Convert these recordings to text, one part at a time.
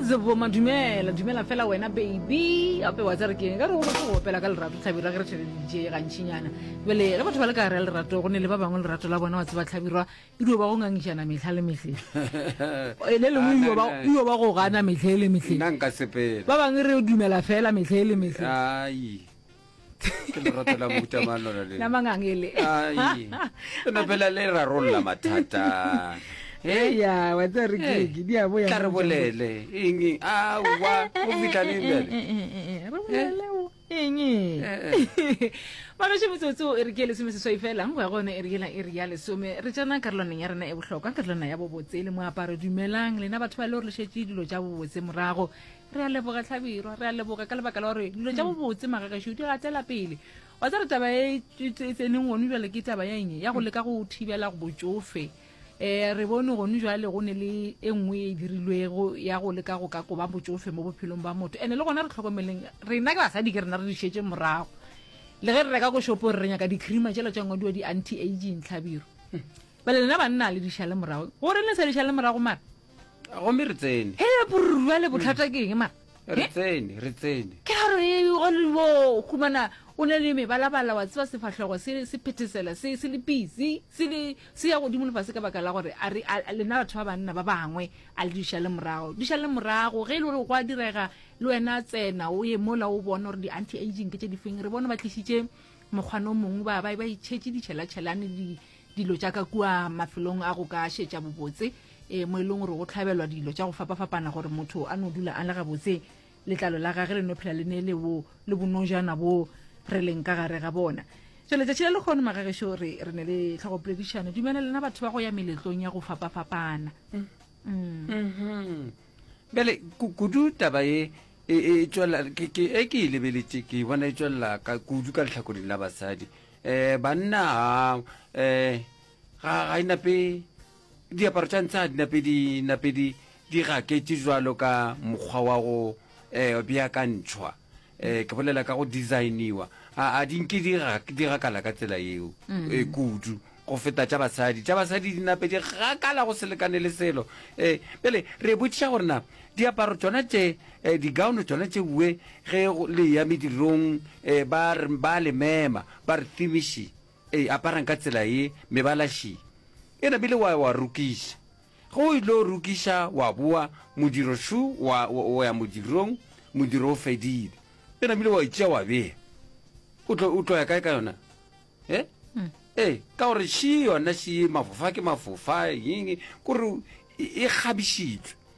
Zevoma, dumela dumela fela wena baby gape wa tsare keng ka re go batho go opela ka lerato tlhabirwa ge re tšhere dije gantšhinyana bele ge batho ba le ka gare ya lerato go ne le ba bangwe lerato la bona wa tseba tlhabirwa e dio ba go ngangišana metlha le metlhe e le lengwe dio ba- Ana- dio ba go gana metlhe le metlhe nna nka sepela ba bangwe re dumela fela metlhe le metlhe ai ke lerato la mohuta mang lona le la mangang ele ai lona fela le rarolla mathata Eh, ya wa tsa re Eh, ke di a bo ya tla re bolele eng eng a wa o fitlhaneng bjale re bolele o eng Eh, magaše metsotso e re ke lesome seswai fela go ya gone e re yela e re ya lesome re tsena karolwaneng ya rena e bohlokwa karolwana ya bobotse le moaparo dumelang lena batho ba le gore le šetse dilo tša bobotse morago re a leboga tlhabirwa re a leboga ka lebaka la gore dilo tša bobotse magagešo di gatela pele wa tsa re taba e tseneng gone jale ke taba ya eng ya go leka go thibela go botsofe um re bone gone jale go ne le e nngwe e dirilwego ya go leka go ka koba botsofe mo bophelong ba motho ande le gona re tlhokomeleng rena ke basadi ke rena re di šetse morago le ge re reka ko shopo re re nyaka di-creama tšela tša ngwadiwa di-anti aging tlhabiro bale lena banna le dišale morago gore le sa dišale morago mara gomme re tsene he borwa le botlhata ke eng mara re tsene re tsene ke a re oliwo humana o ne le mebalabala wa tseba sefahlego se se phethesela se se le busy se le se ya godimo lefase ka baka la gore a re lena batho ba banna ba bangwe a le diša le morago diša le morago ge e le gore go a direga le wena tsena o ye mola o bona gore di-anti aging ke tše difeng re bone ba tlisitše mokgwana o mongwe ba ba ba itšhetše ditšhelatšhelane dilo tša ka kua mafelong a go ka šetša bobotse e mo e leng gore go tlhabelwa dilo tša go fapafapana gore motho a no dula a le gabotse letlalo la gage le no phela le ne le wo le bonojana bo re leng ka gare ga bona so letšatši le lekgono magagešo re re ne le tlhogopoledišano dumela lena batho ba go ya meletlong ya go fapafapana mm. Mm. Mm-hmm. bjale kudu taba e e, e tswelela e ke e lebeletše ke e bona e tswelela kudu ka letlhakoring la basadi eh banna ha eh ga ga inape diaparo tša ntsha dinape di nape di di gaketše jwalo ka mokgwa wa go eh beakantšhwa eh ke bolela ka go designiwa a a di nke di ga di gakala ka tsela yeo e kudu go feta tša basadi tša basadi di nape di gakala go selekane le selo eh pele re botšiša gore na diaparo tsona tše E, digaono tšona tšeue ge le eya medirong, e, ba, ba le mema, ba re, Thimi Shi, e, aparang ka tsela ye, mebala Shi. E namile wa, wa rokiša. Ge o ylo rokiša, wa boa, modiro Shu, wa, wa ya modirong, modiro o fedile. E namile wa e tšea wa bea. O tlo, o tlo ya kae ka yona? E? E, ka gore Shi yona Shi, mafofa ke mafofa, ying, kore e, e kgabišitšwe.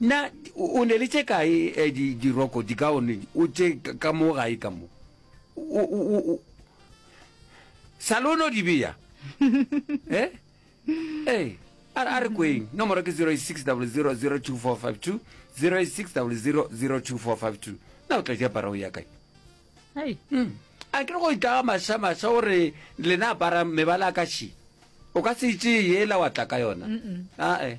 Na o ne le tše kae eh, di, diroko dikaone o tše ka mo gae ka mo o, o, o, o. sa lo no di beya eh? eh a re- a re kweng nomoro ke 06000242 06000242 na o tla di apara o ya kae Hai. Mm. a ke re go itlaga masha masha gore lena apara mebala a ka she o ka se itše yela wa tla ka yona ae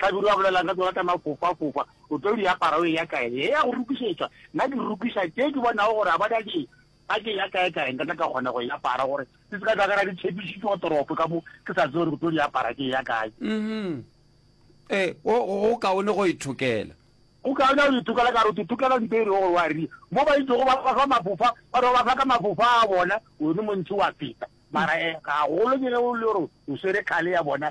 Hlabirwa a bolela ka tsona tša mafofafofa, O tlo di apara o eya kae? He ya go rokišetšwa, nna ke rokiša tše ke bonago gore ga ba di a ke ba ke eya kaekae nka tla ka kgona go e apara gore di se ka tla ka ra di tshepišitšwe go toropo ka mo ke sa tse gore ke tlo di apara ke eya kae. Uhum. Ee, go go kaone go ithokela. Go kaone go ithokela ka gore o tlo thokela ntho e rego gore wa ria. Mo ba itšego ba ba fa mafofa, ba re ba ba fa ka mafofa a bona, wena mo ntšhi wa feta. Mara e gagolo ke ge o le gore o swere khale ya bona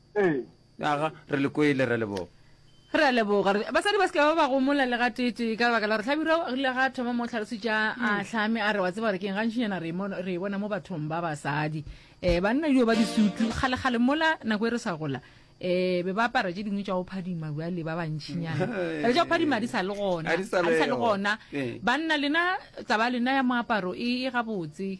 Ee. Aga, re le kwele, Rra Leboga. Re a leboga. Re- Basadi ba se ke ba ba gomola le ga tete ka lebaka la gore Hlabirwa o rile ga a thoma mo o tlhalositša a hlame a re wa tseba gore keng gantšinyana re e mon- re e bona mo bathong ba basadi um banna dio ba disutu kgalekgale mola nako e re sa gola um be ba apara tše dingwe tša go phadima bjale ba bantšhinyana Bjale tša go phadima di sa le gona Ha di sa ha di sa le leyo. gona Ee. banna lena taba lena ya moaparo e e gabotse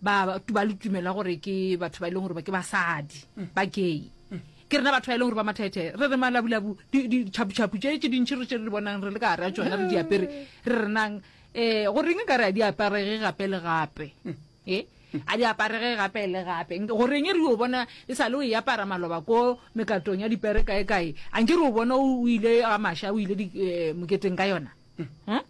ba tu ba lutumela gore ke batho ba e leng gore ba ke basadi ba gay ke rena batho ba e leng gore ba mathethe re re malabulabu di- di- ditšhaputšhapu tše tše dintšhi re tše re di bonang re le ka gare a tsona re di apere re renang um goreng e ka re a di aparege gape le gape e a di aparege gape le gape Nke- goreng e re o bona e sa le o e apara maloba ko mekatong ya dipere kae kae a nke re o bona o o ile a masha o ile di- eh, moketeng ka yona Huh?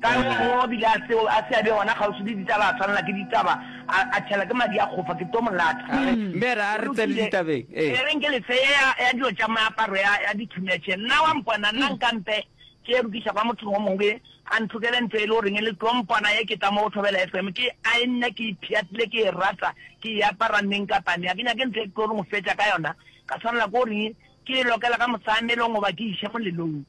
Ka re mo o bile a seo a se a be gona kgauswi le ditaba a swanela ke ditaba a a tšhela ke madi a kgofa ke to mo latha. Ra re. Mme ra re tsene ditabeng. Ee. E re nke lefe ye ya ya dilo tša meaparo ya ya dithumetše nna wa mpona nna nka mpe ke ye rukiša kwa mothong o mongwe a nthokele ntlo e le goreng e le tlo mpona ye ke tla mo go thobela FM ke a e nna ke ipheatile ke e rata ke e apara neng kapa neng a ke nyake ntlo e ke tlo re mo fetša ka yona ka swanela ke goreng ke e lokela ka mosamelong goba ke iše molelong.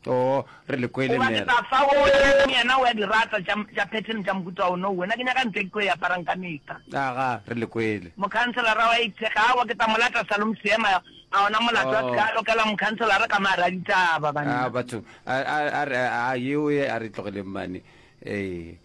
Too, re le kwele, Gobane Mary. Tafsa o bolela le yena, o a di rata tša, tša pattern tša mohuta o no. Wena, ke nyaka ntlo e ke tlo e aparang ka mehla. Aga, re le kwele. Mokhanselara wa itše, Ga a wa, ke tla mo lata salong seema. A gona molato a se ka a lokela mokhanselara ka mo gare ga ditaba, banna. A, batho, a, a, a re, a, a, yeo ye a re tlogeleng mane. Ee.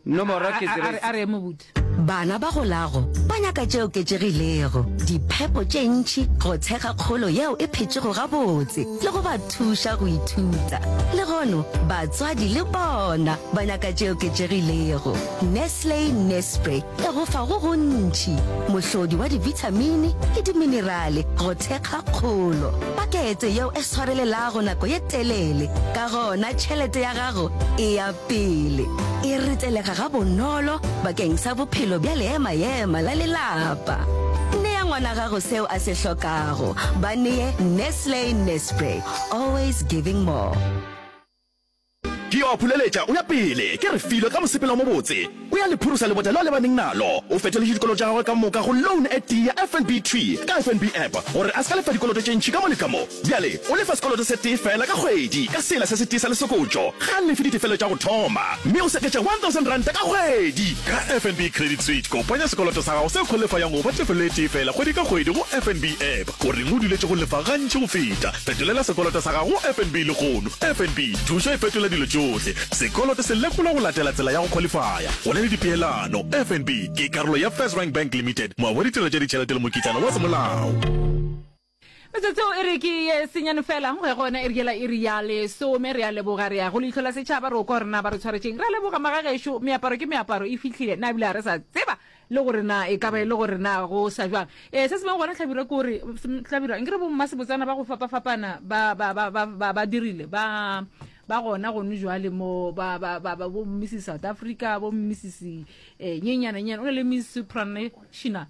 Nomoro ke 0. Bana ba go lago ba nyaka tše oketšegilego, diphepo tše ntši, go tshega kgolo yeo e phetšego gabotse le go ba thuša go ithuta. Legono batswadi le bona ba nyaka tše oketšegilego. Nestle Nespre e go fa go gontši, mohlodi wa dibithamini le diminerale go thekga kgolo, pakete yeo e swarelelago nako ye telele, ka gona tšhelete ya gago e a Pele, e retelega gabonolo bakeng sa bophelo bja leema-ema la lelapa. Nea ngwana gago seo a se hlokago. Ba nee Nestle Nespray, always giving more. Ke yo a phuleletša o ya pele, ke re filo ka mosepelo o mobotse. O ya le phurusa lebota leo a lebaneng nalo. O fetoletše dikoloto tša gagwe ka moka go loan e tee ya FNB Tree ka FNB App gore a se ka lefa dikoloto tše ntši ka mo le ka mo. Bjale o lefa sekoloto se tee feela ka kgwedi ka sela se se tee sa lesokotšo. Ga a lefe ditefelelo tša go thoma, mme o seketša R1,000 ka kgwedi. Ka FNB Credit Switch, kopanya sekoloto sa gago seo kgolefayang go fa tefelelo e tee feela kgwedi ka kgwedi go FNB App. O reng o duletše go lefa gantši go feta? Fetolela sekoloto sa gago go FNB lehono. FNB, thušo e fetola dilo tšohle. Sekoloto se lekolwa go latela tsela ya go khwalifaya. Go na le dipeelano. FNB ke karolo ya FirstRand Bank Limited, moabi wa ditirelo tša ditšhelete le mokitlana wa semolao. Metsotso e re ke ye senyane fela go ya go ona e re ke la iri ya lesome. Re a leboga, re ya go leihlo la setšhaba, re o kwa gore na ba re tshwaretšeng. Re a leboga magagešo, meaparo ke meaparo e fihlile, na ebile ga re sa tseba Le gore na e ka ba e le gore na go sa jwang. Ee, se sengwe gona, Hlabirwa, ke gore, Hlabirwa, nke re bommasebotsana ba go fapafapana ba, ba, ba, ba, ba, ba dirile, ba, ba gona gono jwale mo, ba, ba, ba, ba bo Mrs. South Africa, bo Mrs. Eh, nyenyana, nyenyana, o na le Miss Supranational,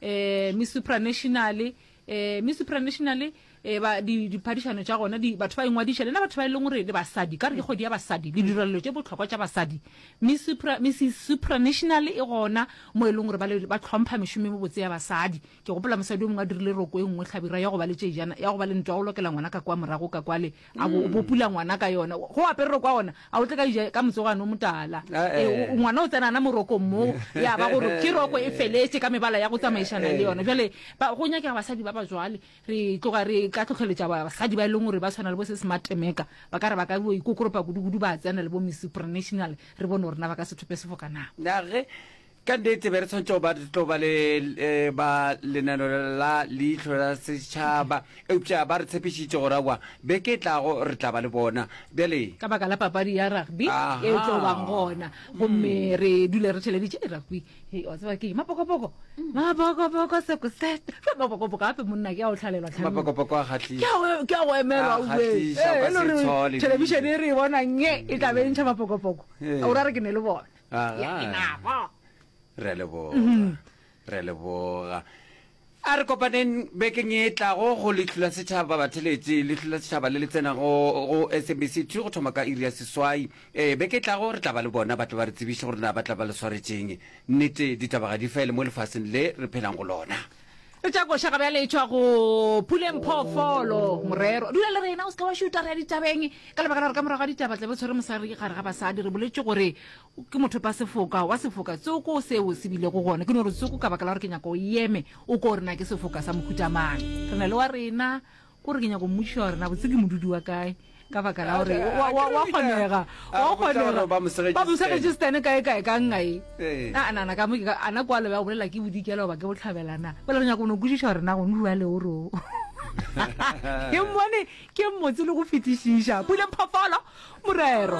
eh, Miss Supranational, eh mi supranational eh ba di diphadišano tša gona di batho ba ingwadiša lena batho ba e leng gore le basadi ka re ke kgodi ya basadi le direlelo tše botlhokwa tša basadi mi supra mi supranational e gona mo e leng gore ba le ba tlhompha mešomo mo botse ya basadi ke gopola mosadi o mongwe a dirile roko e nngwe tlhabira ya go ba le tšejana ya go ba le ntwa o lokela ngwana ka kwa morago ka kwale a bo bo pula ngwana ka yona go aperero kwa ona a o tle ka ija ka motsogane o motala Eh, Eh, eh. o- ngwana o tsenana morokong moo ya ba gore ke roko e feletse ka mebala ya go tsamaišana le yona jale ba- go nyakega basadi ba ba jwale re tloga re ka tlhotlheletša ba- basadi ba e leng gore ba tshwana le bo se smart meka ba ka re ba ka bo ikokoropa kudukudu ba tsena le bo miss supranational re bone gore na ba ka sethope sefo ka na nage Ka nnete, be re tshwanetse go ba re tlo ba le eh, ba lenano la leihlo la setšhaba, eupša ba re tshepišitše gore aowa, beke e tlago re tla ba le bona. Bjale ka baka la papadi ya rugby Aha. e tlo bang gona gomme re dule re theleditše e rugby Hei, wa tseba ke eng? mapokopoko mapokopoko sekoset Jwale mapokopoko gape monna ke a o tlhalelwa tlhalong. mapokopoko a kgahlisa. Ke a go- ke a go emelwa A o be. kgahlisa, o ka Eh, e le se gore tshole thelebišene e re e bona nge e tla be e ntšha mapokopoko Eh. o ra re ke ne le bona ya inabo re leboga mhm. re leboga a re kopaneng bekeng e tlago go letlhula setšhaba batheletše letlhula setšhaba le le tsenago go smbc two go thoma ka iri ya seswai ee beke e tlago re tla ba le bona ba tla ba re tsebiše gore na ba tla ba le swaretšeng nnete ditaba ga di fele mo lefaseng le re phelang go lona e tša koša ga bjale e tšwa go puleng phoofolo morero dula le rena o se ka wa šuta re ya ditabeng ka lebaka la gore ka morago ga ditaba tlabe tshwere mosadi gare ga basadi re boletše gore ke motho pa sefoka wa sefoka tsoko seo se bilego gona ke no re tsoko ka baka la gore ke nyaka o eme o ko rena ke sefoka sa mohutamang re na le wa rena O re ke nyako mmotšiša gore na botse ke modudi wa kae ka baka la gore wa- wa- wa kgonega A wa re botša gore kgonega ba mo segetše ba mo segetše Stan. stane kae kae ka nna e Ee. a nana ka mo ke ka- a na kwa lobe ya go bolela ke bodikela goba ke botlhabelana pele re nyako o ne o kwešiša gore na go nua le o re o ke mmone ke mmotse le go fetišiša puleng phofolo morero